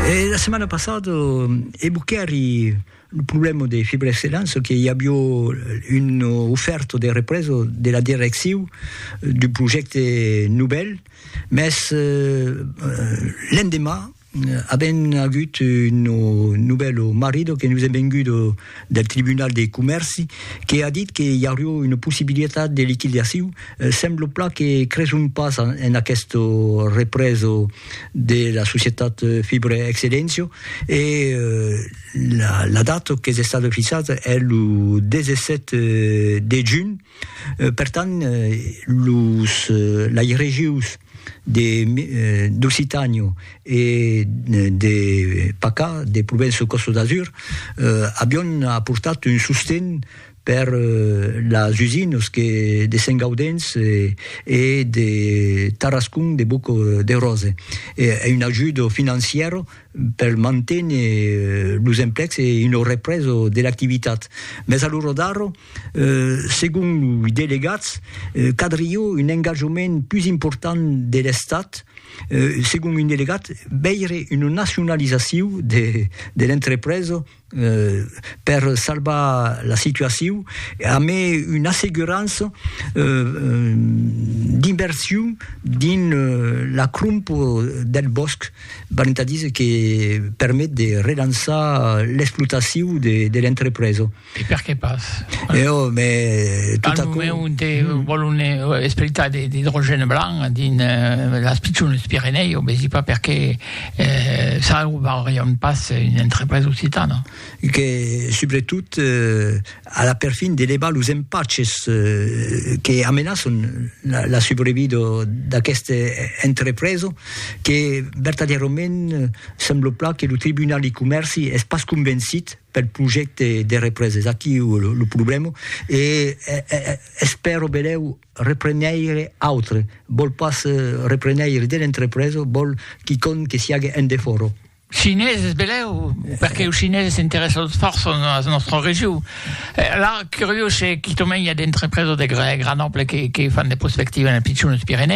E la setmana passada e Buccheri lo problema de Fibra Excellence que i avió un ofèrta de represa de la direcciu d'un projècte novèl, mès l'endemà avèm agut un novèl marrida que nos es venguda del Tribunal de Comèrci que a dit que i aurió una possibilitat de liquidaciu, semblo pla que creson pas en aqueste represo de la societat Fibre Excellencio e la data qu'es estada fixada es lo 17 de junh. Per tant, los lairejus de d'Occitània e de Pacà, de Provença Costa d'Azur, avion aportat un sosten per las usinas que de Sent Gaudens e de Tarascon de Boc de Rose, e una ajuda financièra per manténer los emplecs e una represa de l'activitat. Mès a l'ora d'ara, segon loi delegats, cadrió un engatjament pus important de l'Estat, segon un delegat, veire una nacionalizacion de l'entrepresa, per salvar la situacion e a mai una assegurança d'inversion dins la cromp del bòsc, valent a díser que permet de relançar l'explotacion de l'entrepresa. E perqué pas? Ò, mès tot aquò... Al moment onte vòlon explotar de l'idrogène blanc dins las pichones Pirenèus, vesi pas perqué Salvarion pas una entrepresa occitana. Que, subretot, a la perfin de levar los empaches que amenaçon la subrevida d'aquesta entrepresa, que vertadièrament sembla plan que lo Tribunal de Comèrci es pas convencit pel projècte de represa. Es aquí lo problèma e espèro benlèu Repreneire autre vòl pas repreneire de l'entrepresa, vòl quicòm que siague en defòra. Chineses, belèu, perque los chineses s'interèssan fòrça a la nòstra region. La curiós se quicòm i a d'entrepresa de gran ample que fan de prospectiva en es pichones Pirenèus.